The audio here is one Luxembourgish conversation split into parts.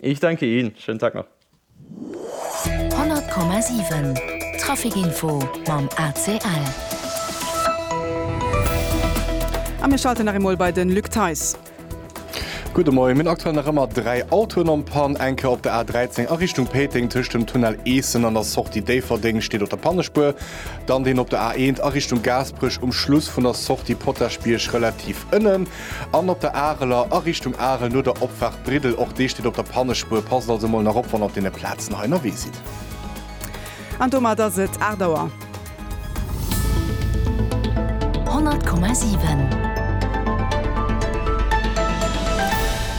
Ich danke Ihnen, schönen Tag noch. 100,7 Trafic Info mam ACL. A mir schalten nach emol bei de Luc Theis. Gudde Moien. Mir hunn aktuell nach ëmmer dräi Autoen am Pann. Eng Kéier op der A 13 a Richtung Péiteng tëscht dem Tunnel Eessen an der Sortie Déifferdeng steet op der Pannespuer. Dann deen op der A 1 a Richtung Gaasperech um Schluss vun der Sortie Potaschbierg relativ ënnen. An op der Areler a Richtung Arel no der Opfaart Briddel, och déi steet op der Pannespuer. Passt also mol nach op wann der op deene Plazen hei ënnerwee sidd. An domat ass et 8 Auer. 100,7.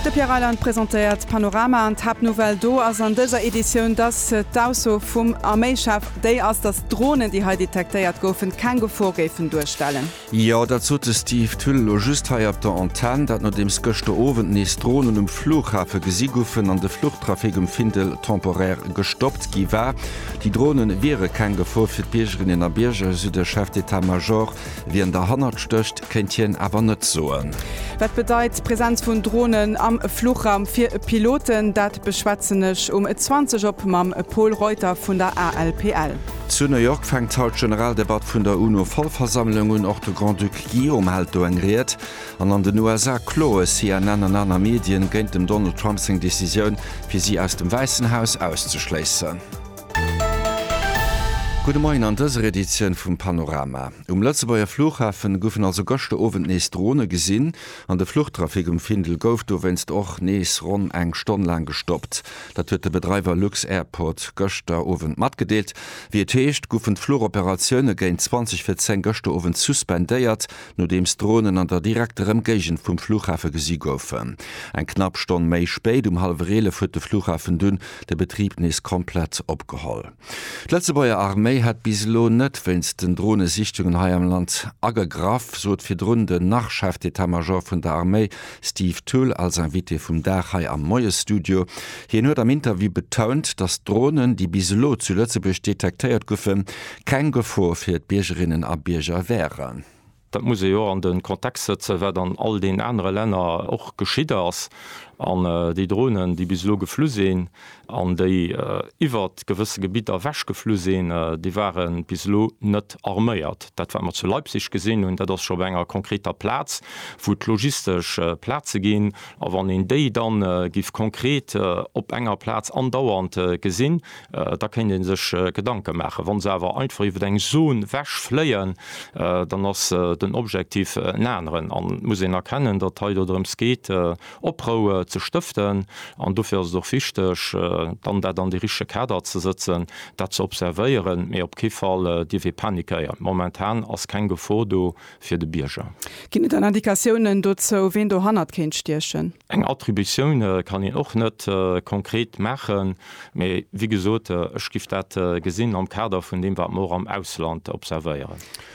De Pierre Reyland presentéiert d'Panorama an d'Haaptnouvelle do ass an dëser Editioun, dass d'Ausso vum Arméichef déi ass, dass d'Dronen, déi hei detektéiert goufen, keng Gefor géifen duerstellen. Jo, dat sot de Steve Thull elo just hei op der Antenn. Dat nodeems gëschter Owend nees Dronen um Flughafe gesi goufen an de Fluchtrafic um Findel temporaire gestoppt gi war. Déi Drone wiere keng Gefor fir d'Biergerinnen a Bierger, esou de Chef d'Etat Major. Wien derhannert stécht, kéint hien awer net soen. Wat bedeit d'Presenz vun Dronen am Fluchraum fir Piloten? Dat beschwätzen ech um 20 op mam Pol Reuter vun der ALPL. Zu New York fänkt haut d'Generaldebatt vun der UNO-Vollversammlung un. Och de Grand-Duc Guillaume hält do eng Ried. An an den USA kloe CNN an aner Medien géint dem Donald Trump seng Decisioun, fir si aus dem Wäissen Haus auszeschléissen. Gudde Moien an dëser Editioun vum Panorama. Um Lëtzebuerger Flughafen goufen also gëschter Owend nees Drone gesinn an de Fluchtrafic um Findel gouf dowéinst och nees ronn eng Stonn laang gestoppt. Dat huet de Bedreiwer lux-Airport gëschter Owend matgedeelt. Wéi et heescht, goufen d'Flugoperatioune géint 20 vir 10 gëschter Owend suspendéiert, nodeems Dronen an der direkter Ëmgéigend vum Flughafe gesi goufen. Eng knapp Stonn méi spéit, um hallwer 11, huet de Flughafen dunn de Betrib nees komplett opgeholl. D'Lëtzebuerger Arméi hätt bis elo net wéinst den Dronesichtungen hei am Land agegraff, sot virdrun den Nach-Chef d'Etat-Major vun der Arméi, Steve Thull als Invité vum Dag hei am Moiesstudio. Hien huet am Interview betount, datt d'Dronen, déi bis elo zu Lëtzebuerg detektéiert goufen, keng Gefor fir d'Biergerinnen a Bierger wären. Dat muss ee jo an de Kontext sëtzen, wat an all deenen anere Länner och geschitt ass. An déi Dronen, déi bis elo geflu sinn, an déi iwwer gewësse Gebidder ewech geflu sinn, déi ware bis elo net arméiert. Dat wat mer zu Leipzig gesinn hunn, dat ass scho op enger konkreter Plaz, wou et logistesch Plaze ginn. A wann een déi da giff konkret op enger Plaz andauernd gesinn, da kéint ee sech Gedanke maachen. Wa se awer einfach iwwer eng Zon ewech fléien, dann ass den Objektiv en aneren. An et muss een erkennen, datt et hei dodrëms geet, Oproue ze stëften. An dofir ass et och wichteg, dann dat an de richtege Kader ze sëtzen, dat ze observéieren. Mee op kee Fall dierf ee panikéieren. Momentan ass keng Gefor do fir de Bierger. Ginn et dann Indikatiounen dozou, ween dohannert kéint stiechen? Eng Attributioun kann een och net konkret maachen. Mee wéi gesot, ech giff dat gesinn am Kader vun deem, wat mer och am Ausland observéieren.